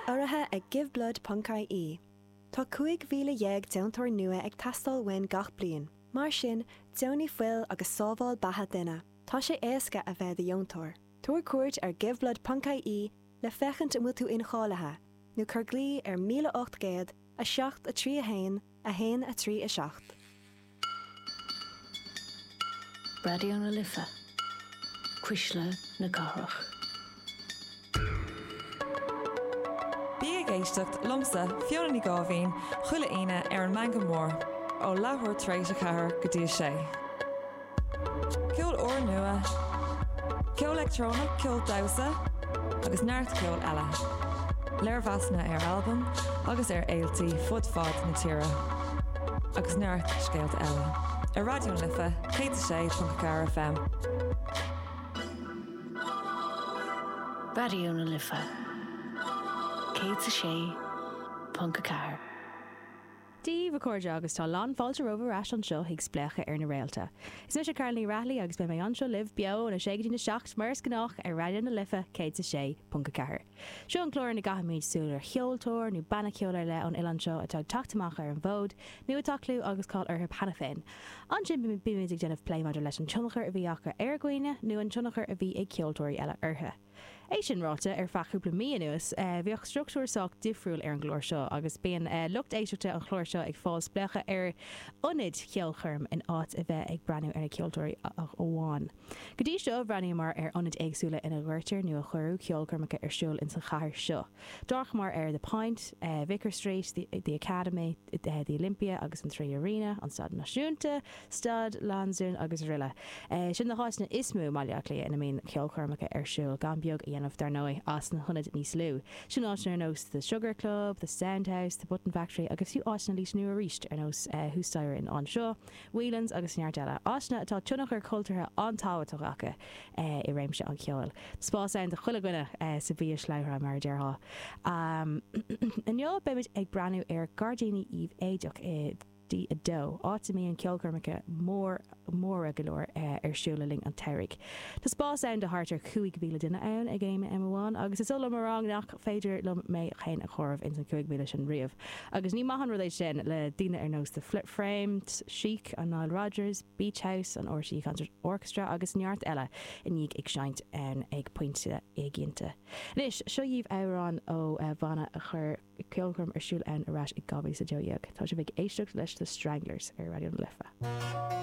Urraithe ag GiveBlood.ie, tá 15,000 deontóir nua ag teastáil uainn gach bliain, mar sin, deonaigh fuil agus sábháil beatha duine. Tá sé éasca a bheith do dheontóir. Tabhair cuairt ar GiveBlood.ie le féachaint an bhfuil tú incháilithe, nó cuir glao ar 1800 7 3 1 1, 3, 7. Raidió na Life, cuisle na cathrach. Bí ag éisteacht liomsa, Fiona Ní Gháibhín, chuile Aoine ar an Meangadh Mór, ó leathuair tar éis a ceathair go dtí a sé. Ceol úrnua, ceol leictreonach, ceol damhsa agus neart ceoil eile. Léirmheasanna ar albaim agus ar fhéiltí fud fad na tíre. Agus neart scéalta eile. Ar Raidió na Life 106.4 FM. Raidió na Life 106.4. Daoibh, a chairde, agus tá lán fáilte romhaibh ar ais anseo chuig Spléachadh ar na Réalta. Is mise Carál Ní Raghallaigh agus beidh mé anseo libh, beo, ón 6 go dtí'n 7, mar is gnách, ar Raidió na Life 106.4. Seo an clár ina gcaithimid súil ar cheoltóir nó banna ceoil ar leith ón oileán seo atá ag teacht amach ar an bhfód, nó atá clú agus cáil orthu cheana féin. Ansin bímid ag déanamh plé maidir leis an tionchar a bhí acu ar dhaoine, nó an tionchar a bhí ag ceoltóirí eile orthu. É sin ráite, ar feadh cúpla mí anuas, bhíodh struchtúr sách difriúil ar an gclár seo agus bíonn lucht éisteachta an chláir seo ag fáil spléachadh ar ionaid cheolchoirm in áit a bheith ag breathnú ar na ceoltóirí ach amháin. Go dtí seo, bhreathnaíomar ar ionaid éagsúla ina gcuirtear nó a cuireadh ceolchoirmeacha ar siúl ins an chathair seo. D'amharcamar ar The Point, Vicar Street, The Academy, The Olympia agus an Three Arena, an Staid Náisiúnta, Staid Lansdún agus araile. Sin na háiteanna is mó i mBaile Átha Cliath ina mbíonn ceolchoirmeacha ar siúl, gan beag a dhéanamh, dar ndóigh, as na hionaid níos lú. Sin áiteanna ar nós The Sugar Club, The Sound House, The Button Factory agus fiú áiteanna níos lú arís ar nós thuas staighre in Anseo, Whelan's agus neart eile, áiteanna atá tionchar cultúrtha an-tábhachtach acu i réimse an cheoil. Spás ann do chuile dhuine, sa bhiashlabhra, mar a déarfá. Inniu beimid ag breathnú ar Gairdíní Uíbh Eachach i. D2, áit a mbíonn ceolchoirmeacha mór, móra go leor ar siúl le linn an tsamhraidh. Tá spás ann do thart ar 5,000 duine ann ag aon am amháin, agus is oth liom a rá nach féidir liom mé féin a chomhaireamh ins an 5,000 sin riamh, agus ní maith an rud é sin le daoine ar nós The Frames, Chic and Nile Rodgers, Beach House, an RTÉ Concert Orchestra agus neart eile i ndiaidh ag seinnt ann ag pointe éiginnte. Anois, seo dhíbh amhrán ó bhanna a chuir. ceolchoirm ar siúl ann ar ais i 2012. Tá sibh ag éisteacht leis The Stranglers ar Raidió na Life.